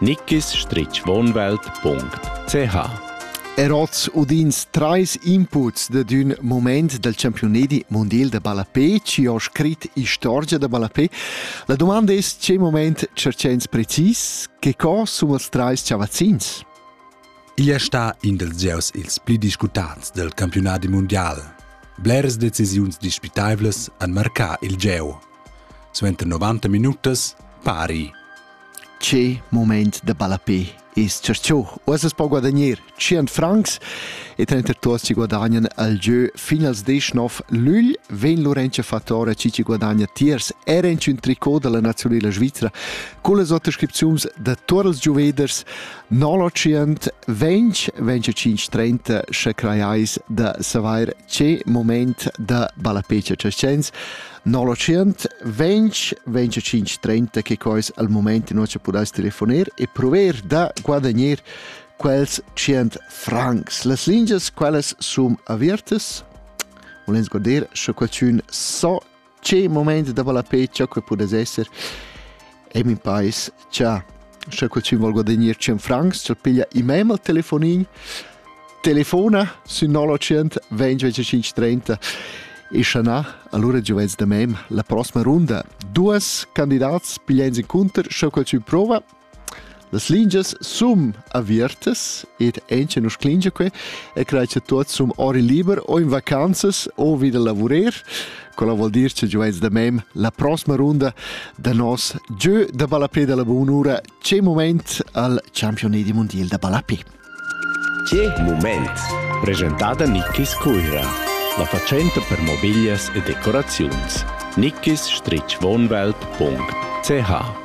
nickisstritschwohnwelt.ch Er oz udins trais inputs dad ün mument dal campiunedi mondial da ballapé chi ho scrit istorgia da ballapé. La domanda es che moment tscherchens precis che co sun els trais chavazzins? Igl è stà in dels gieus ils pli discutants del campionadi mondial. Bleras decisiuns dispitaivlas han marcà il gieu. Suenter 90 minutas pari Che moment da ballapé es tschercho? Uoss as po guadagner 100 francs e trenter tuot si guadagnan al giö fin als 19 lügl. Vegn Lorenza Fattora chi ci guadagna tiers er in ün tricot da la nazionela svizra cun las autoscripziuns da tuot els gioveders 920 25 30 sche crajais da savair che moment da ballapé cha tscherchens 900 20 25 30 che quais al moment in nossa pudais telefoner e prover da guadagnar quels 100 francs. Las lingias quelles sun avertes. Volens guardare sche qualcun so che moment da vala pe, ciò che pudes esser. e mi pais cha sche qualchün vol guadagnar 100 francs, ch'el piglia i mem al telefonin, telefona sün 0900 20 30 e sche na, allura giovens da mem la prossima runda. Duas candidats piglian encunter, sche qualchün prova, Las lingias sun aviartas ed ancien us clingia que e crai cha tuots sun ori liber o in vacanzas o vi da lavurer. Quella vuol dir cha giovens da mem la prossima runda da nos giö da ballapè da la bunura C'è moment al Championat di Mondial da ballapè. Che moment! Presentata Nickis Cuira, la facenta per mobiglias e decoraziuns. nickis-wohnwelt.ch